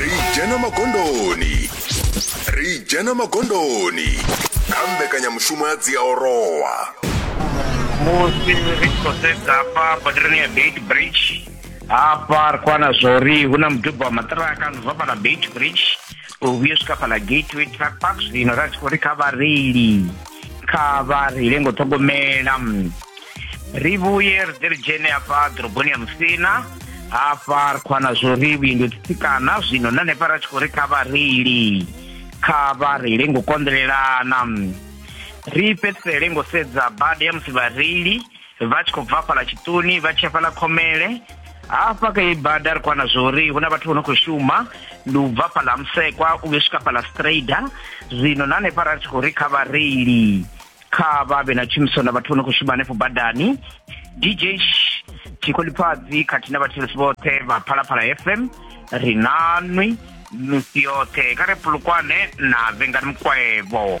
ri dzhena magondoni ri dzhena magondoni kha mbekanyamushumo ya dziaorowa musi ri tshi khou sedza hafha badirani ya beit bridge hafha ri khou wana zwa uri hu na muduba wa maṱiraka zwi bva fhala beit bridge u vhuya swika fhala gateway truck park zwino ra tshi khou ri kha vhareili kha vha ri lengo ṱhogomela mm, ri vhuye ri ḓe ri dzhene hafha ḓoroboni ya musina hafha ri khou ana zwo ri vhuindo tsitsikana zwino na hanefha ra tshi khou ri kha vhareili kha vha reile ngo konḓelelana mm, ri fhedzisele ngo sedza bada ya musi vhareili vha tshi khou bva fhala tshiṱuni vha tshi ya fhala khomele hafha kha ibada ri kwana zwori hu na vhathu vho no khou shuma ndi u bva fhala musekwa u yo swika fhala strader zwino na hanefha ra tshi khou ri kha vhareili kha vha vhe na tshumiso na vhathu vho no khou shuma hanefho badani dj tshikolipfadzi khathihi na vhathelesi vhoṱhe vha phalaphala fm ri nanwi misi yoṱhe kha re pulukwane na vengani mukwevho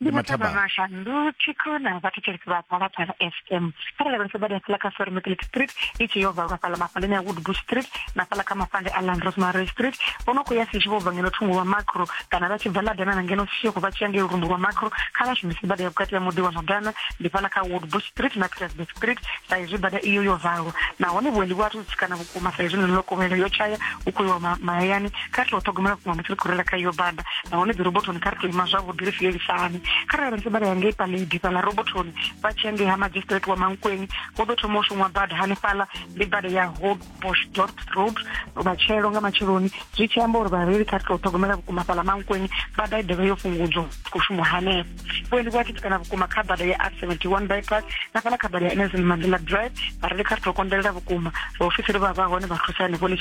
ndi mataba mashanduki khona vhathetshelesi vha phalaphala fm kharali vha sebada fhala kha soromekele street i tshi yo valwa fhala mafhaleni ya woodbush street na fhala kha mafande a land rosemary street vho no khou ya sishi vho bva ngeno thungo lwa macro kana vha tshi bva ladana na ngeno sishi khou vha tshi ya ngei lurumbu lwa macro kha vha shumise bada ya vhukati ya muḓi wa ladana ndi fhala kha woodbush street na pietersburg street sa izwi bada iyo yo valwa nahone vhuendi vhu athu tsikana vhukuma sa izwi ḽeneḽo kovhelo yo tshaya hu khou iwa mahayani kha ri tou ṱhogomela vhukuma musi ri khou rela kha iyo bada nahone dzi robotoni kha ri tou ima zwavhuḓi ri sielisane kha rali ntse vha re hangei paledi fhaḽa robotoni vha tshi hangei ha magistrate wa mankweni hu ḓo thoma u shumwa bada hanefhaḽa ndi bada ya hobosdort road matshelo nga matsheloni zwi tshi amba uri vhareili kha ri tou ṱhogomela vhukuma fhaḽa mankweni bada i ḓovha yo fhungudzwa khou shumwa hanefho vhuendi vhu a titikana vhukuma kha bada ya r 71 bypass na fhala kha bada ya nelson mandela drive vhareli kha ri tou konḓelela vhukuma vhaofisiri vha vha hone vha thusa henefho ḽi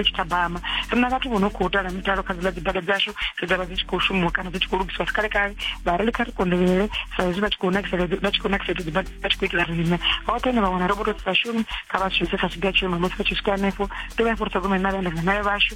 tshi thabama ri na vhathu vho no khou tala mitalo kha dziḽa dzibada dzashu dzi dza vha dzi tshi khou shumiwa kana dzi tshi khou lugisiwa sikale kale vhareli kha ri konḓelele sa hezwi vha tshi khou nakisela vha tshi khou nakisela dzibada vha tshi khou itela riṋe hoṱhe ne vha wana roboto dzi sa shumi kha vha shumise sa tshiga tshiume musi vha tshi swika henefho ḓivha ya fhuri ṱhogomele na vhaendela nayo vhashu